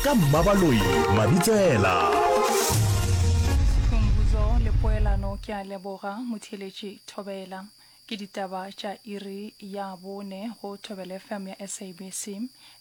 ka mmabaloi mabitsela phumbuzo le poelano ke a leboga motheletši thobela ke ditaba tša iri ya bone go thobele fm ya sabc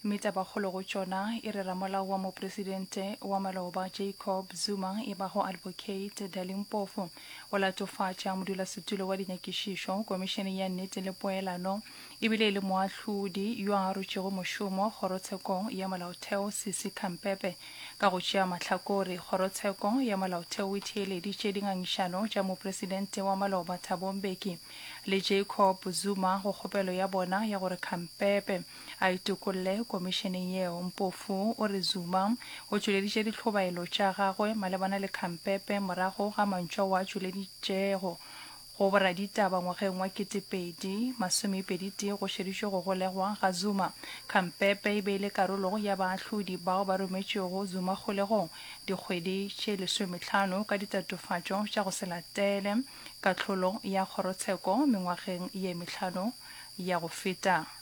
mme tabakgolo go tšona e re ramolao wa mopresidente wa maloba jacob zuma e bago advocate dalimpofo o latofatša modulasetulo wa dinyakišišo komišeneng ya nnete le poelano e bile e le moahlodi yo a arotšego mošomo Kgorotshekong ya Molaotheo Sisi Khampepe. Ka go tšea mahlakore, Kgorotsheko ya Molaotheo e theeleditše dingangišano tša Mopresidente wa maloba Thabo Mbeki le Jacob Zuma go kgopelo ya bona ya gore Khampepe a itokolle komišeneng yeo. Mpofu o re Zuma o tšweleditše ditlhobaelo tša gagwe malebana le Khampepe morago ga mantšu ao a tšweleditšego Go boraditaba ngwageng wa ketepedi masomepeditee go šeditšwe go golegwa ga Zuma. Kgampepe e be e le karolo ya baahlodi bao ba rometšwego Zuma kgolegong dikgwedi tše lesometlhano ka ditatofatšo tša go se latele kahlolo ya kgorotsheko mengwageng ye mehlano ya go feta.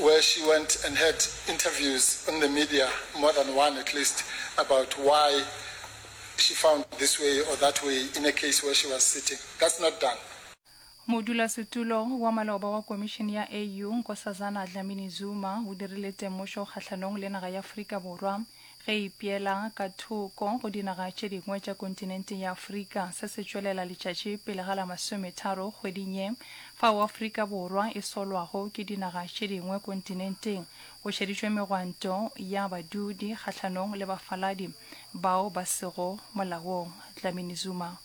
where she went and had interviews on the media, more than one at least, about why she found this way or that way in a case where she was sitting. That's not done. Modulasetulo wa maloba wa Komišene ya AU, Nkosazana Dlamini-Zuma, o dirile temošo kgahlanong le naga ya Afrika Borwa. Ge e ipeela ka thoko go dinaga tše dingwe tša kontinente ya Afrika, se se tšwelela letšatši pele ga la masometharo kgweding ye, fao Afrika Borwa e solwago ke dinaga tše dingwe kontinenteng, go šeditšwe megwanto ya badudi kgahlanong le bafaladi bao ba sego molaong. Dlamini Zuma.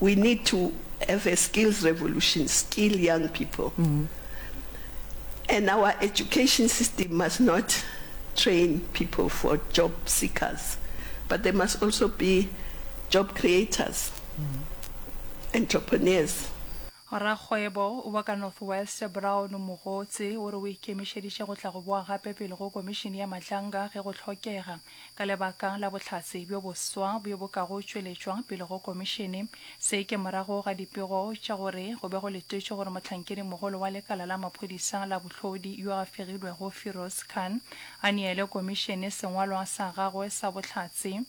We need to have a skills revolution, skill young people. Mm -hmm. And our education system must not train people for job seekers, but they must also be job creators, mm -hmm. entrepreneurs. Rakgwebo wa ka North West Brown Mogotsi o re o ikemišeditše go tla go boa gape pele go Komišene ya Matlanga ge go hlokega. Ka lebaka la bohlatse bjo boswa bjo bo ka go tšweletšwa pele go Komišene, se ke morago ga dipego tša gore go be go letetšwe gore mohlankedi-mogolo wa lekala la maphodisa la bohlodi yo a fegilwego Firoz Khan a neele Komišene sengwalwa sa gagwe sa bohlatse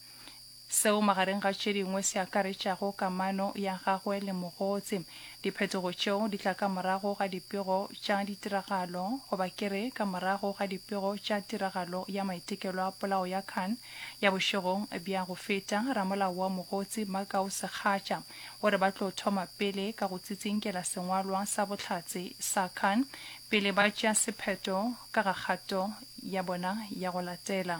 seo magareng ga tše dingwe se akaretšago kamano ya gagwe le mogotse Diphetogo tšeo di tla ka morago ga dipego tša ditiragalo, goba ke re ka morago ga dipego tša tiragalo ya maitekelo a polao ya Khan ya bošegong bja go feta. Ramolao wa Mogotsi, Makau Sekgatša, o re ba tlo thoma pele ka go tsitsinkela sengwalwa sa bohlatse sa Khan pele ba tšea sephetho ka ga kgato ya bona ya go latela.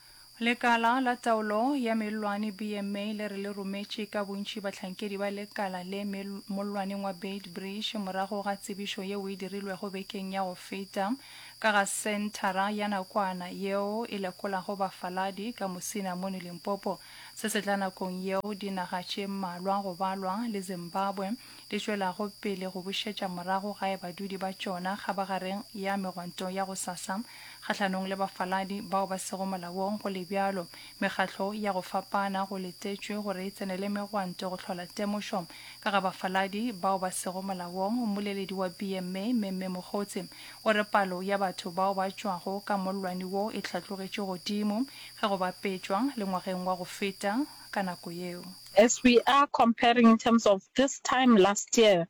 Lekala la Taolo ya Mellwane, BMA, le re le rometše ka bontši bahlankedi ba lekala le mel mollwaneng wa Beitbridge morago ga tsebišo yeo e dirilwego bekeng ya go feta ka ga senthara ya nakwana yeo e lekolago bafaladi ka mosina mono Limpopo. Se se tla nakong yeo dinaga tše mmalwa go balwa le Zimbabwe di tšwelago pele go bušetša morago gae badudi ba tšona kgabagareng ya megwanto ya gosasa Kgahlanong le bafaladi bao ba sego molaong go le bjalo, mekgatlo ya go fapana go letetšwe gore e tsenele megwanto go hlola temošo ka ga bafaladi bao ba sego molaong. Mmoleledi wa BMA, Memme Mogotsi, o re palo ya batho bao ba tšwago ka mollwane wo e hlatlogetše godimo ge go bapetšwa le ngwageng wa go feta ka nako yeo. As we are comparing in terms of this time last year,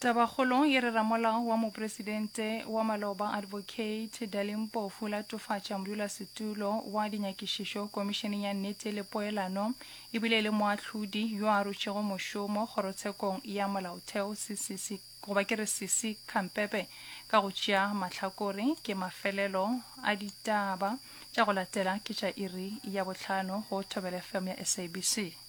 Tabakgolong ye re ra Molao wa Mopresidente wa Maloba Advocate Dali Mpofu latofatša modulasetulo wa dinyakišišo Komišeneng ya Nnete le Poelano e bile e le moahlodi yo a rutšego mošomo Kgorotshekong ya Molaotheo CCC goba ke re Sisi Khampepe ka go tšea mahlakore ke mafelelo a ditaba tša go latela ke tša iri ya bohlano go Thobela FM ya SABC.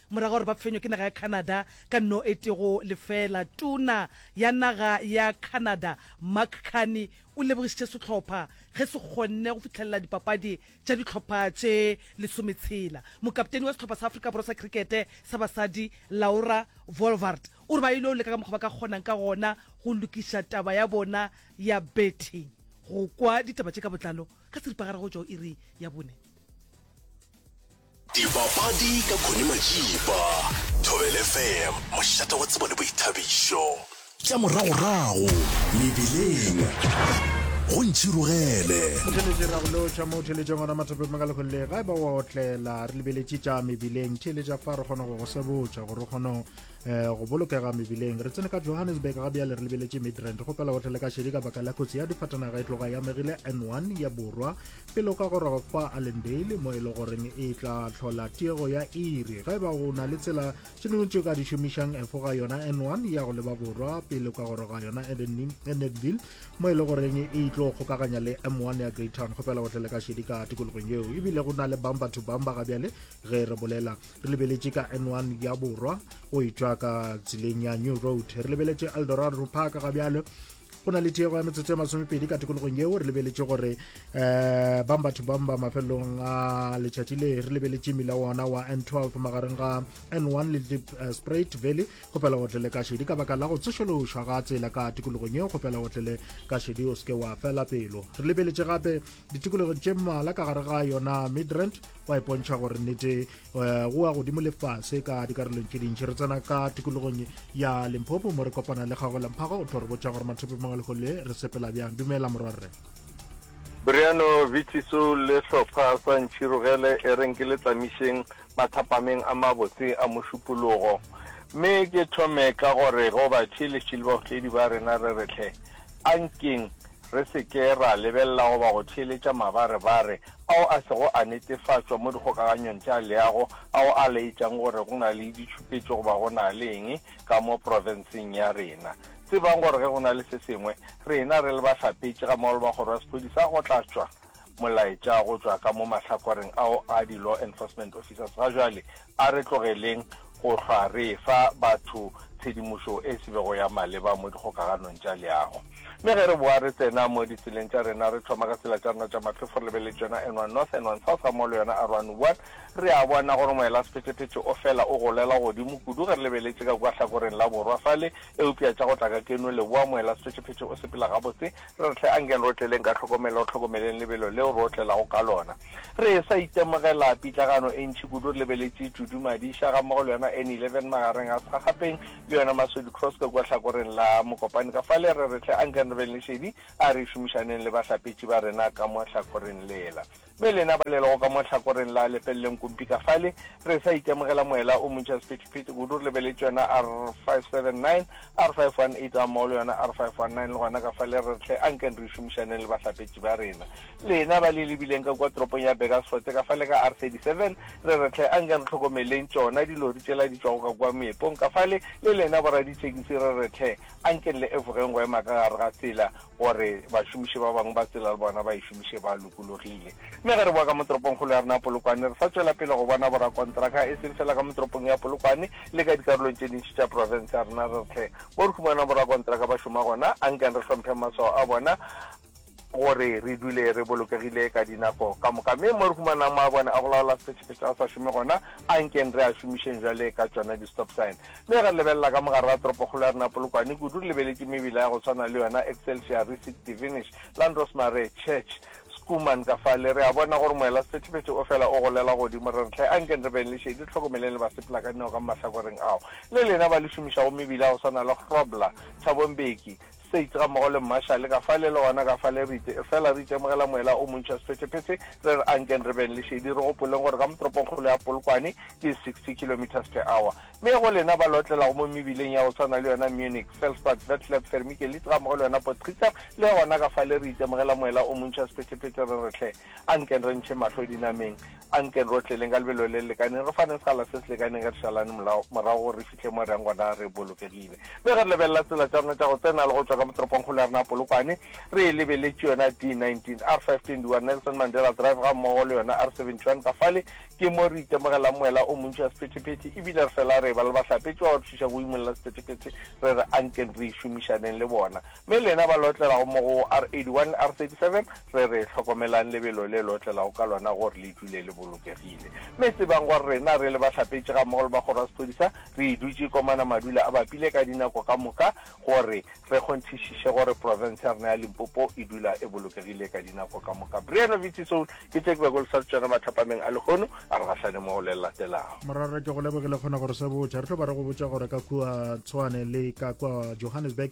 Morago ga gore ba fenywe ke naga ya Canada ka no e tego lefela, tuna ya naga ya Canada Mark Carney o lebogišitše sehlopha ge se kgonne go fihlelela dipapadi tša dihlopha tše lesometshela. Mokapteni wa sehlopha sa Afrika Borwa sa krikete sa basadi Laura Vollvart o re ba ile go leka ka mokgwa ba ka kgonang ka gona go lokiša taba ya bona ya betting. Go kwa ditaba tše ka botlalo ka seripagare go tšwa go iri ya bone. Dibapadi ka Connie Majiba, Thobela FM, mošate wa tsebo le boithabišo. Tša moragorago mebileng go ntšhirogele. Motheletše ra go lotšha mo theletšeng gona mathapeng maka lekgolele ga e ba wa otlela re lebeletše tša mebileng theletša fa re kgona go go sebotša gore o kgone Eh, go bolokega mebileng re tsene ka johannesburg ga bjale re lebeletše midrand go pela gotlhele ka šedi ka baka la kotsi ya difatanaga e tloga ya megile n1 ya borwa Pele o ka goroga kwa Allendale, mo e le goreng e tla hlola tiego ya iri, ga e ba o na le tsela tše dingwe tše ka di šomišang, efoga yona N1 ya go leba borwa pele o ka goroga yona Edenville, mo e le goreng e tlo kgokaganya le M1 ya Greytown. Kgopela o tle le ka šedi ka tikologong yeo, ebile go na le bumper to bumper ga bjale ge re bolela. Re lebeletše ka N1 ya borwa go e tšwa ka tseleng ya New Road. Re lebeletše Eldorado Park ga bjale go na le tiego ya metsotso ya masomepedi ka tikologong yeo re lebeletše gore um bang batho bang ba mafelelong a letšatši le re lebeletše mmila wona wa n 12 magareng ga n 1 le deep eh, sprit valley go pela go tlele ka šedi ka baka la go tsošološwa ga tsela ka tikologong yeo go pela go tlele ka šedi o seke wa fela pelo re lebeletše gape ditikologo tše mmala ka gare ga yona midrand wa ipontšha gore nnete Eh, go wa godimo lefase ka dikarolong tše dintši re tsena ka tikologong ya limpopo mo re kopana le gago lamphago o tlo re botša gore mathope mangwe lego le re sepela bjang dumela morwarre briano vitiso le hlopha sa ntšhirogele e reng ke le tlamišeng mathapameng a mabotse a mošupologo mme ke thome ka gore go batšheletšhele baotledi ba rena re retlhe A nkeng re se ke ra lebelela goba go theeletša mabarebare ao a sego a netefatšwa mo dikgokaganyong tša leago ao a laetšang gore go na le ditšhupetšo goba go na le eng ka mo profenseng ya rena. Tsebang gore ge go na le se sengwe, rena re le bahlapetši gammogo le ba Kgoro ya Sephodisa go tla tšwa Molaetša go tšwa ka mo mahlakoreng ao a di-law enforcement officers ga bjale a re tlogeleng go hlwa re efa batho tshedimošo e se bego ya maleba mo dikgokaganong tša leago. Mme ge re boa re tsena mo ditseleng tša rena, re thoma ka tsela tša rena tša matlhofo, re lebeletse yona N1 North, N1 South gammogo le yona R101. Re a bona gore moelasephethephethe o fela o golela godimo kudu ge re lebeletse ka kua hlakoreng la borwa fale, eupša tša go tla ka keno leboa moelasephethephethe o sepela gabotse. Re tle anke re otleleng ka tlhokomelo, re hlokomeleng lebelo leo re otlelago ka lona. Re e-sa itemogela pitlagano e ntši kudu re lebeletše Judu Madisha gammogo le yona Annie Levin magareng a Sagapeng le yona Masodi Kroeske kua hlakoreng la Mokopane. Kafale re re tle anke re beng le šedi, a re šomišaneng le bahlapetši ba rena ka mo hlakoreng lela. Me lena ba lelago ka mo hlakoreng la, lepeleleng kumpi ka fale, re sa itemogela moela o montši a sephethephethe kudu, re lebeletše yona R579, R518 gammogo le yona R519, le gona ka fale re re hle anken re šomišaneng le bahlapetši ba rena. Lena ba le lebileng ka kua toropong ya Burgersfort ka fale ka R37, re re hle anken re hlokomeleng tšona dilori tšela di tšwago ka kua moepong ka fale, le lena boradithekisi re re hle anken le efogeng go ema ka gare ga tsela. gore bašomiši ba bangwe ba tsela le bona ba e šomiše ba lokologile. Mme ge re boa ka mo toropongkgolo ya rena ya Polokwane, re sa tšwela pele go bona borakontraka e seng fela ka mo toropong ya Polokwane le ka dikarolong tše dintši tša profense ya rena, re rthe mo re humanang borakontraka ba šoma gona, a nkeng re hlompheng maswao a bona gore re dule re bolokegile ka dinako ka moka. Mme mo re humanang maabone a go laola sephetšaphetša a sa šome gona, a nkeng re a šomišeng bjale ka tšona di-stop sign. Le ge re lebelela ka mogare ga toropokgolo ya rena Polokwane, kudu re lebeletše mebila ya go swana le yona Excelsior, Risit, Divinish, Landros Mare, Church, Schoeman ka fale. Re a bona gore moela sephethephethe o fela o golela godimo. Re re hle, ankeng re beng le šedi, re hlokomeleng le basepela ka dinao ka mo mahlakoreng ao le lena ba le šomišago mebila ya go swana le Grobler, Thabo Mbeki, States gammogo le Mmarshale ka fale le gona ka fale, re itše, efela re itemogela moela o montši wa sephetephete, re re ankeng re beng le šedi, re gopoleng gore ka mo toropongkgolo ya Polokwane ke 60 kilometres per hour. Mme go lena ba le otlelago mo mebileng ya go swana le yona Munich, Felsbad, Vetlab, Fermikelitz gammogo le yona Potsrichter, le gona ka fale re itemogela moela o montši wa sephetephete, re re, Hle, ankeng re ntšheng mahlo dinameng, ankeng re otleleng ka lebelo le le lekaneng, re faneng sekgala se se lekaneng, ge re šalane morago gore re Ke mo reng gona re bolokegile. Mme ge re lebelela tsela tša rena tša go tsena le go tšwa ka mo toropongkgolo ya rena ya Polokwane, re e lebeletše yona D19, R521, Nelson Mandela Drive gammogo le yona R71 ka fale, ke mo re itemogelang moela o montši wa sephethephethe e bile re fela re eba le bahlapetši ba ba re thušago go imolla sephethephethe, re re, Anken re šomišaneng le bona. Me lena ba lotlelago mo go R81, R37, re re, Hlokomelang lebelo le le otlelago ka lona gore le dule le bolokegile. Me tsebang gore rena re le bahlapetši gammogo le ba Kgoro ya Sephodisa re dutše komana madula a bapile ka dinako ka moka gore re kgonthišiše gore profense ya rena ya Limpopo e dula e bolokegile ka dinako ka moka. Briano Vitsi Soul ke tše ke bego le sa re tšona mathapameng a lehono a re gahlane mo go le le latelago. Morwarra ke go lebogile kgona gore se botša. Re tlo ba re go botša gore ka kua Tshwane le ka kua Johannesburg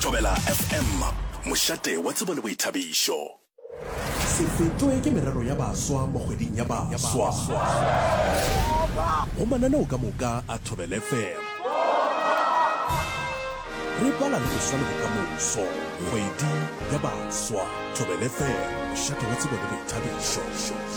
Thobela FM, mošate wa tsebo le boithabišo. Se fetšwe ke merero ya baswa mo kgweding ya baswa. Go mananeo ka moka a Thobela FM. Re bala le go swa le bokamoso. Kgwedi ya baswa. Thobela FM, mošate wa tsebo le boithabišo.